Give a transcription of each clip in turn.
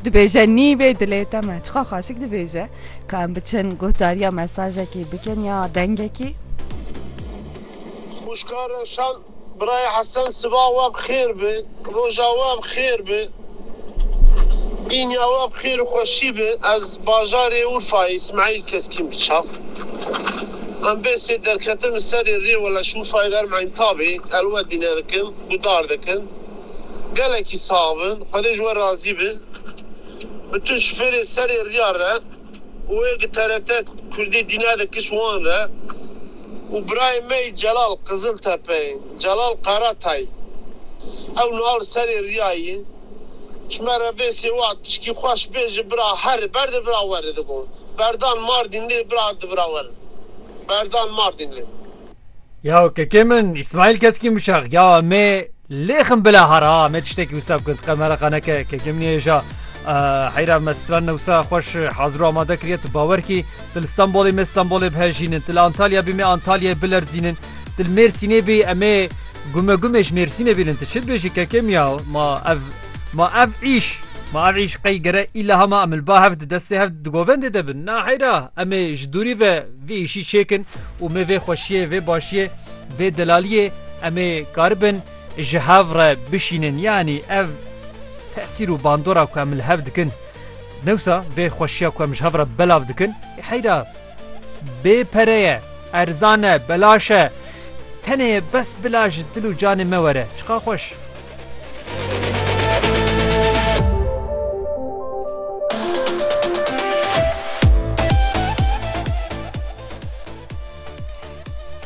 Dibêje nîvê dilê te me çiqa xaşik dibêje ka em biçin guhdariya mesajekî bikin ya dengekî. Xwişka Rewşan Birayê Hesen siba we bi xêr be, roja we bi xêr be, bînya we bi xêr û xweşî be. Ez bajarê Urfayê Îsmaîl Keskîn bi çav. Em bêsê derketin li serê rê weleş Urfayê derim Entabê elwedîne dikin, gudar dikin. Gelekî sax bi. Xwedê ji we razî bi. Bi tu ji fêrê serê riya re û wê gi TRT Kurdî dîna de kiş wan re û birayê me yî Celal Qiziltepeyê, Celal Karatay. Ew niha li serê riya yî. Ji me re vê sêwat tişkî xweş bê ji bira herê ber de bira werê digot. Berdan Mardînlê bira di bira werê. Berdan Mardînlê. Ya kekê min İsmail Keskîn bişax ya me lêxim bila hara me tiştekî wisa bikir diqe me re qeneke kekê min hêja heyra me stran newsa xweş hazir û amade kiriye tu bawer kî til İstanbulê me İstanbulê bihejînin til Antalya bî me Antalyayê bilerzînin til Mêrsînê bî emê gume gumê ji Mêrsînê bînin tu çi dibêjî kekê min ya ma ev ma ev îş ma ev îş qey gere îla hema em li ba hev di destê hev di govendê de bin na heyra emê ji dûrî ve vê îşî çêkin û me vê xweşiyê, vê başiyê, vê delaliyê em ê karibin ji hev re bişînin. Yanî ev tesîr û bandora ku em li hev dikin dewsa vê xweşiya ku em ji hev re belav dikin heyra bê pere ye, erzan e, belaş e. Tenê bes bila ji dil û canê me were. Çiqa xweş.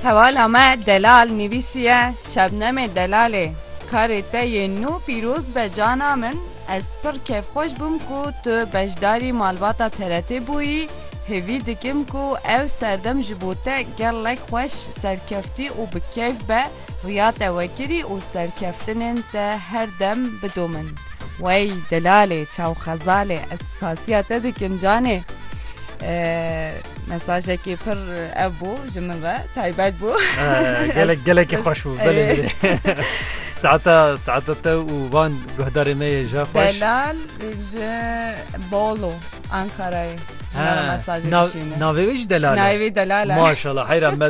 Hevala me delal nivîsiye Şebnemê delalê karê te yê nû pîroz be cana min ez pir kêfxweş bûm ku tu beşdarî malbata TRT bûyî hêvî dikim ku ew serdem ji bo te gelek xweş serkeftî û bi kêf be Riya te wekirî û serkeftinên te her dem bidomin. Wey delalê çaw xezalê ez spasiya te dikim canê mesajekî pir ev bû ji min re taybet bû gelek gelekî xweş bû saeta saeta te û van guhdarê me yê ja xweş Delal ji Bolu Ankarayê navê wî jî delal e navê wî delal e maşallah heyra me